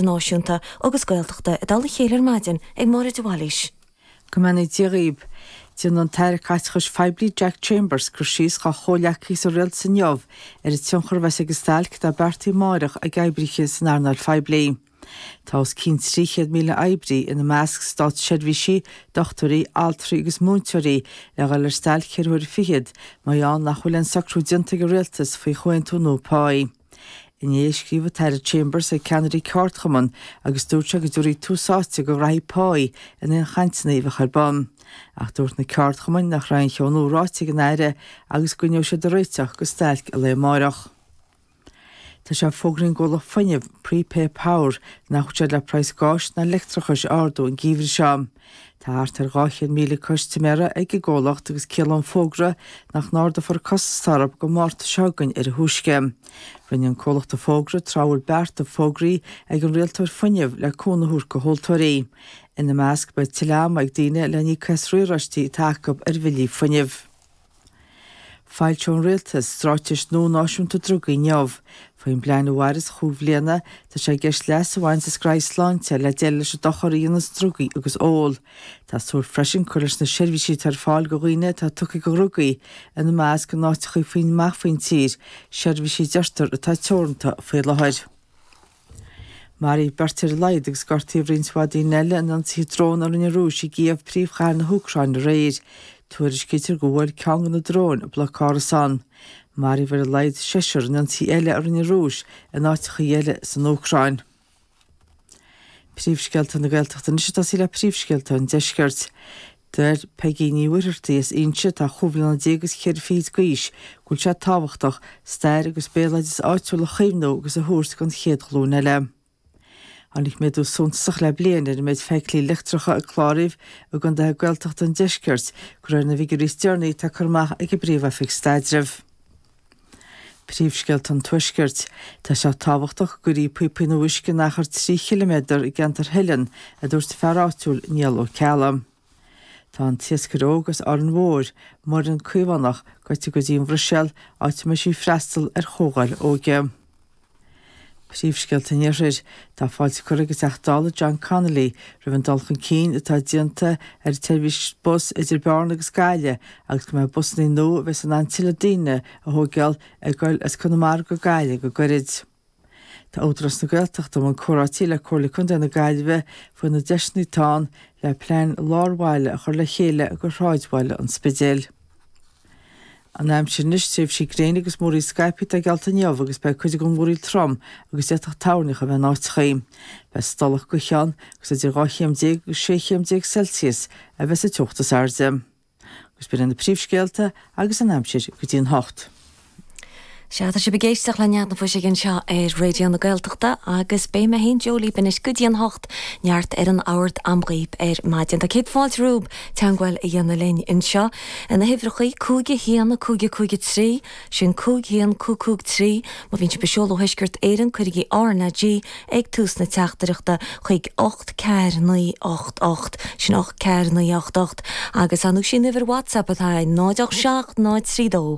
Náisiúnta agus Gaeltachta i dtoll a chéile ar maidin ag Máire de Bhailís. Go mbeannaí Dia dhaoibh. Déanfaidh an tAire Caiteachais Phoiblí Jack Chambers cur síos dá chomhghleacaithe sa Rialtas inniu ar an tionchar a bheas ag an stailc atá beartaithe amárach ag oibrithe san earnáil phoiblí. Tá os cionn 300,000 oibrí, ina measc, státseirbhísigh, dochtúirí, altraí agus múinteoirí, le dhul ar stailc ceithre huaire fichead, mar gheall nach bhfuil aon socrú déanta ag an Rialtas faoi chomhaontú nua páí. Inné, scríobh an tAire Chambers ag ceannairí ceardchumann agus dúirt sé go dtabharfaí tús áite go rátaí páí in aon chainteanna a bheadh ar bun. Ach dúirt na ceardchumainn nach raibh aon cheo nua ráite ag an Aire agus go gcoinneoidh siad ag réiteach go stailc lae amárach. Tá sé fógraithe ag an gcomhlacht fuinnimh, Prepay Power, nach bhfuil siad le praghas gáis ná leictreachais a ardú an geimhreadh seo. Tá thart ar 200,000 custaiméir ag an gcomhlacht agus ciallaíonn an fógra nach n-ardófar costas ar bith go Márta seo againn ar a thúisce. Rinne an comhlacht an fógra tráth a bhfuil bearta fógraithe ag an rialtóir fuinnimh le cúnamh a thabhairt go thomhaltóirí. Ina measc beidh tuilleadh ama ag daoine le n-íoc as riaráistí atá acu ar bhillí fuinnimh. Foilseoidh an Rialtas Straitéis nua Náisiúnta Drugaí inniu. Faoin bplean a mhairfeas chúig bhliana, tá sé i gceist leas a bhaint as creat sláinte le déileáil leis an dochar a dhéananns drugaí agus ól. Tá súil freisin cur leis na seirbhísí atá ar fáil go dhaoine atá tugtha go dhrugaí, ina measc in áiteachaí faoin, amach faoin tír, seirbhísí a deirtear atá teoranta faoi láthair. Maraíodh beirt ar a laghad agus gortaíodh roinnt mhaith daoine eile in ionsaithe drón a rinne an Rúis i gCíév, príomhchathair na hÚcráine, aréir. Tuairiscítear go bhuail ceann de na dróin bloc árasán. Maraíodh ar a laghad seisear in ionsaithe eile a rinne an Rúis in áiteachaí eile san Úcráin. Príomhscéalta na Gaeltachta anois atá sa leath. Príomhscéalta an Deiscirt. Deir Peigí Ní Mhuircheartaigh as Inse atá chúig bhliana déag agus cheithre fichid d'aois go bhfuil sé tábhachtach stair agus béaloideas áitiúil a chaomhnú agus a thabhairt don chéad ghlúin eile. Tháinig méadú suntasach le bliain ar an méid feithiclí leictreacha a cláraíodh i gcondaetha Gaeltachta an deiscirt, de réir na bhfigiúirí is deireanaí atá curtha amach ag an bPríomh-Oifig Staidrimh. Príomhscéalta an Tuaiscirt. Tá sé tábhachtach go gcuirfí píopaí nua uisce in achar 3 chiliméadar i gceantar Theileann, a dúirt fear áitiúil, Niall Ó Ceallaigh. Tá an t-iascaire óg as Árainn Mhóir, Muireann Caomhánach, gaibhte go dtí an Bhruiséal, áit a mbeidh sí ag freastal ar chomhdháil óige. Príomhscéalta an Iarthair. Tá fáilte curtha ag an Teachta Dála John Connolly roimh an dul chun cinn atá déanta ar an tseirbhís bus idir Bearna agus Gaillimh agus go mbeidh busanna nua a bheas in ann tuilleadh daoine a thóigeáil ag goil as Conamara go Gaillimh go gairid. Tá Údarás na Gaeltachta i mbun comhráití le Comhairle Contae na Gaillimhe faoi na deiseanna atá ann le plean lár-bhaile a chur le chéile go shráidbhaile an Spidéil. An aimsir anois, tréimhsí gréine agus múraíl scaipthe atá geallta inniu agus beidh cuid den mhúraíl trom agus d'fhéadfadh toirneach a bheith in áiteachaí. Beidh stolladh gaoithe ann agus idir dhá chéim déag agus sé chéim déag Celsius a bheidh sa teocht is airde. Agus b'in iad na príomhscéalta agus an aimsir go dtí an hocht. Sea, tá sibh ag éisteacht le Nead na Fuiseoige anseo ar Raidió na Gaeltachta agus beidh mé féin, Joe, libh anois go dtí an hocht neart ar an ábhar a'm dhaoibh ar maidin. Tá céad fáilte romhaibh teangmháil a dhéanamh linn anseo iad na huimhreachaí, 51 5 5 3, sin 51 5 5 3. Má bhíonn sibh ag seoladh ó Thuisceart Éireann, cuirigí RnaG ag tús na teachtaireachta chuig 84988, sin 84988. Agus ar ndóigh is í an uimhir WhatsApp atá ann, 087 032